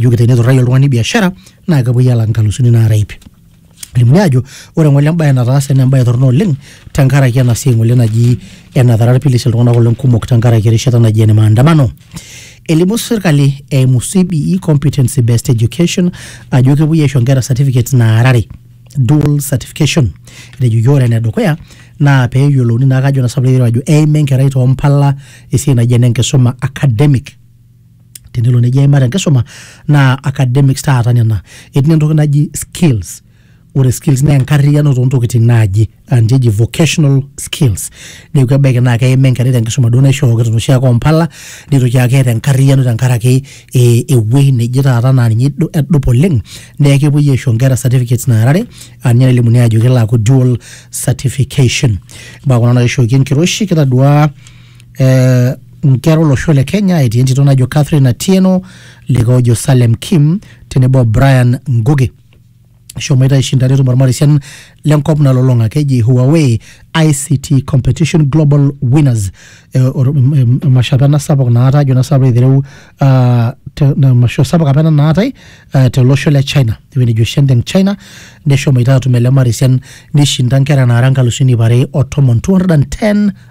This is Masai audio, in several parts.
ijoki teneturrayie oltung'ani biashara naa kepuoi alak inkalusuni naara iip elimuni ajo ore ng'ole embaye nataase naa embaye torrono oleng tenkaraki ena siai ng'ole naji enatara irpilis iltung'anak oleng kumok tenkaraki erishata naji ene maandamano elimu sirkali eimu CBE competency based education ajo kepuoi aisho inkera certificates naara are dual certification etejoki ore enedukuya naa peyiolouni naa kajo nasapu ajo eima enkerai tompala esiai naji ene enkisuma academic tenelo neji aimata enkisuma naa academics taata nena etii entoki naji skills ore skills naa enkarriyiano toontokiting naaji anji eji vocational skills neeku ebaiki naa keima enkerai tenkisuma duo naishooki tenoshi ake ompala nitoki aaku keeta enkarriyiano tenkaraki eh ewuei neje taata naa ninye idu edupa oleng neeku kepuoi aisho inkera certificates naara are anye nelimuni ajo kelo aaku dual certification imbaa kuna naishooki enkiroshi kitaduaa eh, nkera olosho le kenya etii entito najo catherine atieno likae ojo salem kim tenebo o brian ngugi eshomoita aishinda netum ormarisian lenkop nalolong'a keji huawei ict competition global winners Eh, or- em- em- emasho apa ena sapuk naata ajo na sapuk aitereu ah, te- na emasho sapuk apa ena naatae ah, tolosho le china ewueji nejo shenteng china neshomoita atum ele marisian nishinda nkera naara nkalusuni iip are o tomon 210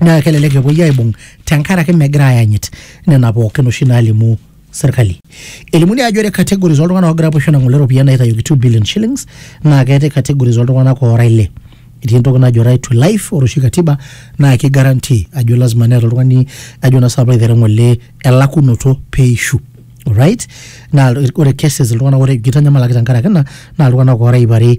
naa kelelek epuoi aibung tenkaraki megira ayanyit nena pookin oshi naalimu serkali. Elimuni ajo ore categories oltung'anak oogira apuo aisho nang'ole iropiyiani naitayioki 2 billion shillings naa keetae categories oltung'anak oora ile. Etii entoki najo right to life ore oshi katiba naa ki guarantee ajo lazima neeta oltung'ani ajo naa sinanu piilo aitereu elakunoto peishu. Alright? Naa ore cases iltung'anak oora kitanyamalaki tenkaraki ina naa iltung'anak oora iip are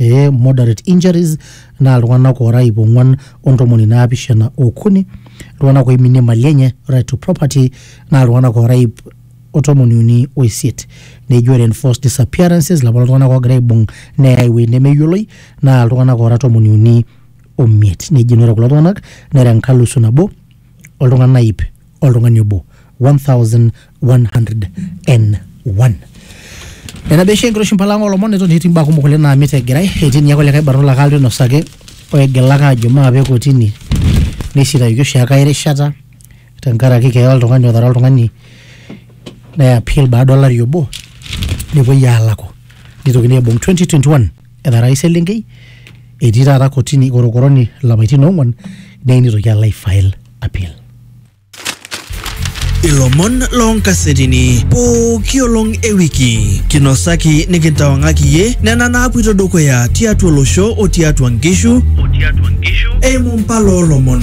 ee moderate injuries naa iltung'anak oora iip ong'uan ontomoni naapishana okuni iltung'anak oiminie mali enye right to property naa iltung'anak oora iip otomoni uni oisiet neji ore enforced disappearances ilapa tung'anak oogira aibung neyae ewueji nemeyioloi naa iltung'anak oora tomoni uni omiet neji ore kulo tung'anak nera enkalusu nabo oltung'ana iip oltung'ani obo 1101 nena beshi enkiroshi mpala ng'olomon neton etii mbaa kumok oleng naamit egirai etii ninye kulikae barnot lake alotu ainosaki oigilaka ajo maape kotini neisitayioki oshi ake ae rishata tenkaraki keeya oltung'ani otara oltung'ani ne appeal baada olari obo nepuoi aalaku neitokini aibung 2021 etara ai selenkei etii taata kotini korokoroni ilapaitin oong'wan neyieu nitoki alo ai file appeal. Ilomon loonkasetini pooki olong e wiki kinosaki nikintawang'aki iyie nena naapuito dukuya tiatua olosho o tiatua nkishu eimu mpala oolomon.